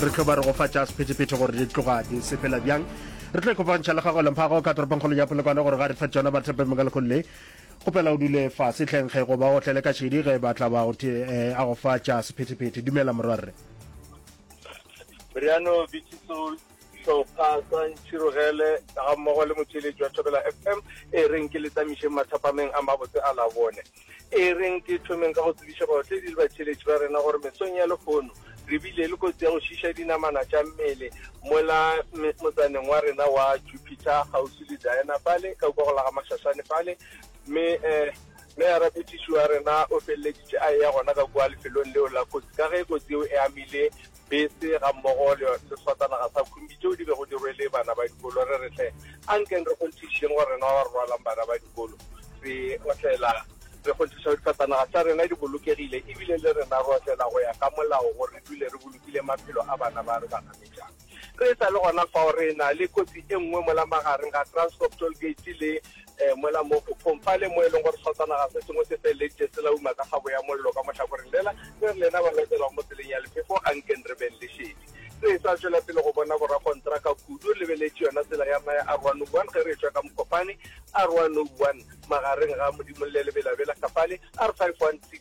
re tlo ba re go fa tša sephetephethe gore di tloga di sepela bjang re tlo ikopantšha le gago lemphago ka toropongkgolo ya polokwane gore ga re fa tsona bathepe mokalekgolle kgopela o dule fa setlhenkge goba o tlele ka šedi ge ba tla ba go eh, a go fa tša sephetephethe dumela morwarre riano bitsiso hlopha sa ntšhirogele ga mmogo le motšheletši wa thobela fm e reng ke le tsamišeng mathapameng a mabotse a labone E reng ke thomeng ka go tsebiša baotledi le batšheletši ba rena gore mesong ya lekgono re bile le kotsi ya go šiša dinamana tša mmele mola motsaneng wa rena wa Jupiter kgauswi le Diana fale ka kwa go la ga Mashashane fale mme eh, meara petiši wa rena o feleleditše a eya gona ka kwa lefelong leo la kotsi ka ge kotsi eo e amile bese gammogo le seswatanaga sa khumbi tšeo di bego di rwele bana ba dikolo, re re hle a nkeng re kgonthišišeng gore rena ba re rwalang bana ba dikolo re otlela re kgonthiša difhatanaga tša rena di bolokegile e bile le rena re otlela go ya ka molao gore re dule re bolokile maphelo a bana ba re ba nametšang. Re e sa le gona fao re e na le kotsi e nngwe mola magareng ga Transcorp Toll Gate le um mola mo kgokgong fale mo e leng gore setsanaga se sengwe se feletse se la uma ka kgabo ya mollo ka mohlakoreng lela re re lena ba lokelwang mo tseleng ya lephefo a nkeng re beng lešedi re sa tšwela pele go bona borakontraka kudu lebeletše yona tsela ya rona ya r one o one ge re etswa ka mokopane r one o one magareng ga modimolle lebelabela kgafale r five one six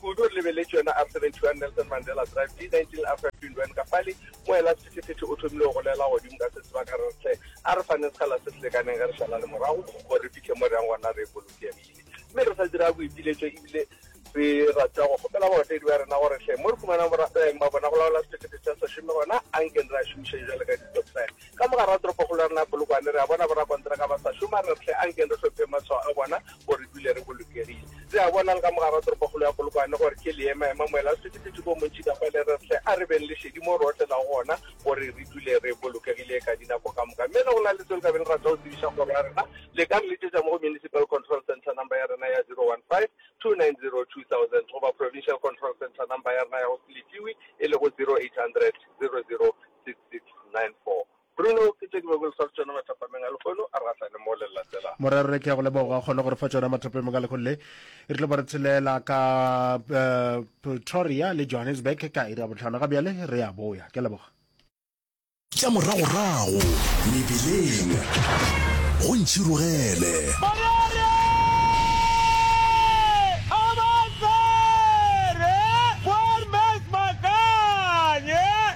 Kudu re lebeletše yona Ap 71 Nelson Mandela Drive, D 19 Ap 15 Wen Kafali, mo ela sephethephethe o thomile go golela godimo ka setseba ka re re hle a re faneng sekgala se se lekaneng ge re šalane morago gore re fihle mo re yang gona re bolokegile mme re sa dira boipiletšo ebile re rata go kgopela baotedi ba rena gore hle mo re fumanang borasaeng ba bona go laola sephethephethe sa sešomi gona a nkeng re a šomišeng jwale ka ditokisane. Ka mogare wa toropokgolo ya rena ya Polokwane, re a bona borakonteraka ba sa šoma, re re hle ankeng re hlophe matshwao a bona gore re dule re bolokegile. Re a bona le ka mogare wa toropokgolo ya Polokwane gore ke leemaema moela o sephethephethe bo montši ka kwale, re re hle a re beng le šedi moo re otlelago gona gore re dule re bolokegile ka dinako ka moka. Mme ge go na le seo le ka beng le rata go tsebiša kgoro ya rena, le ka re letšetša mo go Municipal Control Centre number ya rena ya 015-290-2000 goba Provincial Control Centre number ya rena ya go se lefiwe e lego 0800 00 Morwa rre ke ya go leboga kgone gore fa tšona mathapemeng ka lekgong le re tlo ba re tshelela ka eh, pretoria le johannesburg ka iri ya botlhano ga bjale re ya boya ke a leboga tša moragorago mebeleng go ntšhirogele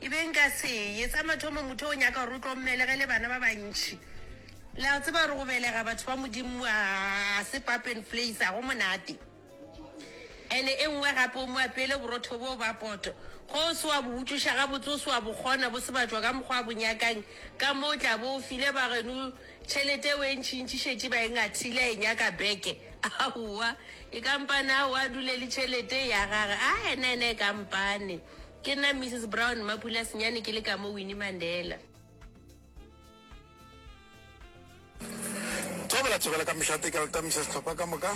E be nka se ye. Sa mathomo, motho o nyaka gore o tlo mmelege le bana ba bantši. Le a tseba gore go belega batho ba Modimo a se pap and place, ga go monate. And-e e nngwe gape, o mo apeele borotho boo ba poto. Ge o se wa bo utlwiša gabotse, o se wa bo kgona, bo se batšwa ka mokgwa a bo nyakang, ka mo o tla bo o file bageno tšhelete eo e ntšintši, šetše ba e ngathile, a e nyaka back. Aowa, e kampane aowa, a dule le tšhelete e ya gagwe. Ae, nene e kampane. Ke nna Mrs Brown Mapula Senyane ke le ka mo Winnie Mandela. Thobela thobela ka mešate ka letamisa sehlopha ka moka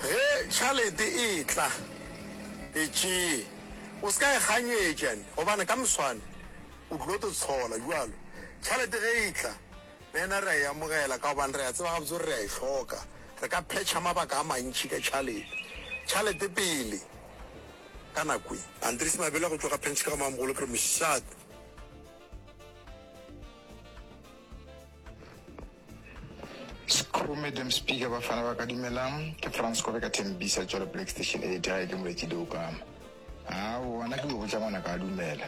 ge tšhalete e tla e tšee o se ka e kganyetšane gobane ka moswane o tlilo to tshola jalo tšhalete ge e tla le ena re a e amogela ka gobane re a tseba gabotse gore re a e hloka re ka phetšha mabaka a mantšhi ka tšhalete tšhalete pele Ka nako ye, Andries Mabele a go tloga phentšhe ka go Mamogolo Phiri Mošate. Screw Madam Speaker, Bafana ba ka dumelang, ke Frans Kobe ka Tembisa, Johannesburg Station 8, gae ke Moletši Douka. Haa, wona ke go botša ngwanaka a dumela.